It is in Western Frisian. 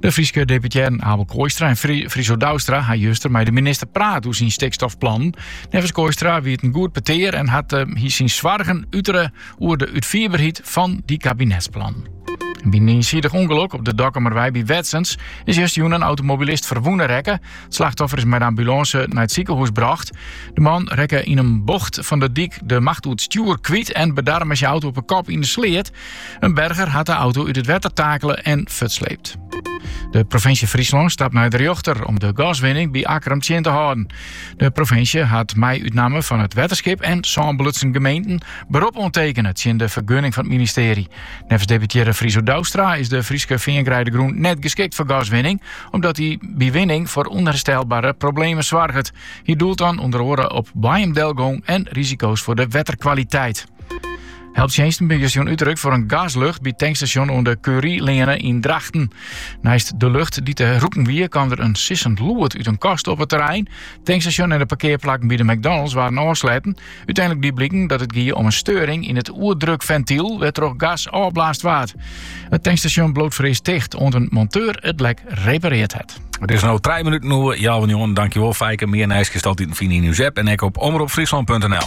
De Fryske deputearren Abel Kooistra en Friso Douwstra ha juster mei de minister praat oer syn stikstofplannen. Neffens Kooistra wie it in goed petear en hat eh, hy syn soargen utere oer de útfierberheid fan dy kabinetsplannen. By in iensidich ûngelok op de Dokkumerwei by Wetsens is justerjûn in automobilist ferwûne rekke. It slachtoffer is mei de ambulânse nei it sikehûs brocht. De man rekke yn in bocht fan de dyk de macht oer it stjoer kwyt en bedarre mei syn auto op 'e kop yn de sleat. In berger hat de auto út it wetter takele en fertsleept. De provinsje Fryslân stapt nei de rjochter om de gaswinning by Akkrum tsjin te hâlden. De provinsje hat mei út namme fan it wetterskip en sân belutsen gemeenten berop oantekene tsjin de fergunning fan it ministearje. Neffens deputearre Friso Douwstra is de Fryske feangreidegrûn net geskikt foar gaswinning, omdat dy by winning foar ûnherstelbare problemen soarget. Hy doelt dan ûnder oare op boaiemdelgong en risiko's foar de wetterkwaliteit. Helptsjinsten binne justerjûn útrukt foar in gaslucht by it tankstasjon oan de Curieleane yn Drachten. Neist de lucht dy't te rûken wie, kwam der in sissend lûd út in kast op it terrein. Tankstasjon en de parkearplakken by de McDonald's waarden ôfsletten. Uteinlik die bliken dat it gie om in steuring yn it oerdrukfentyl, wêrtroch gas ôfblaasd waard. It tankstasjon bliuwt foarearst ticht, oant in monteur it lek repareard hat. It is no trije minuten oer healwei njoggenen. Dankjewol Fijke. Mear nijs kinst altiten fine yn ús app en ek op omropfryslan.nl.